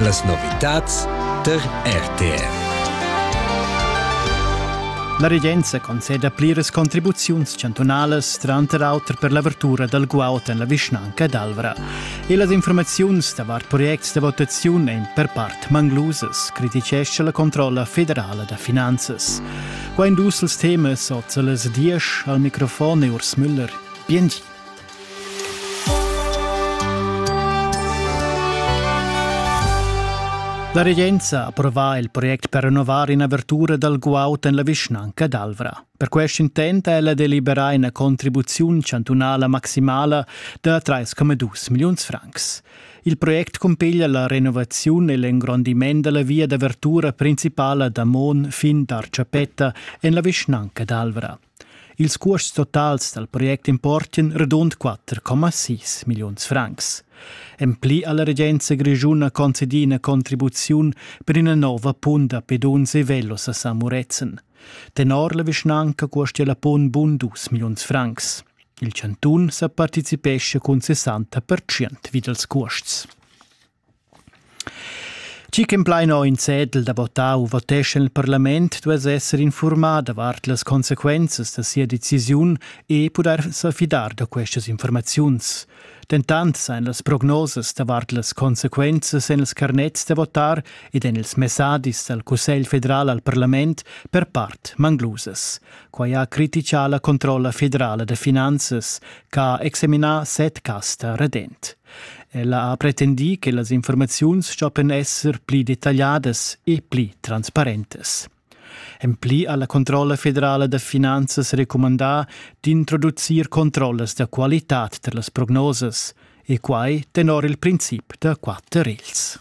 Las novitads tar RTR. La regenza conceda pliras contribuziuns chantunalas, tranter auter per l'avertura dal guaud en la vischnanca d'Alvra. E las informaziuns davart projects da votaziun èn per part manglusas, criticescha la controlla federala da finanzas. Qua in dus temas oz a las diesch al microfon e Urs Müller. Bien La regenza ha approvà il project per rinnovar in'avertura dal guaud en la vischnanca d'Alvra. Per quest intent ha ella deliberà ina contribuziun chantunala maximala da 3,2 milliuns francs. Il project cumpiglia la renovaziun e l'engrondiment della via d'avertura principala da Mon fin d'Arciapetta en la vischnanca d'Alvra. Ils cuosts totals dal project importan radund 4,6 milliuns francs. En pli ha la regenza grischuna concedì ina contribuziun per ina nova punt da peduns e velos a San Murezzan. Tenor la vischnanca costia la punt bun dus milliuns francs. Il chantun sa partecipescha cun 60% vid als cuosts. Chi ch'implaina ho in cedel da votar u voteschan il parlament duess esser informà davart las consequenzas da sia decisiun e pudair sa fidar da questas informaziuns. Dentant sajan las prognosas davart las consequenzas en ils carnets da votar ed en ils messadis dal Cussegl federal al parlament per part manglusas. Quai ha critichà la controlla federala da finanzas ch'ha examinà set cas da redent. Ella ha pretendì che las informaziuns stoppian esser pli detagliadas e pli transparentas. En pli ha la Controlla federala da finanzas recumandà d'introducir controllas da qualitad tar las prognosas e quai tenor il princip da quatter regls.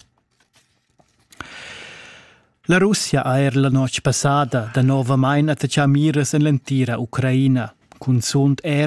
La Russia ha er la notg passada danovamain attachà miras en l'entira Ucraina, cunzunt er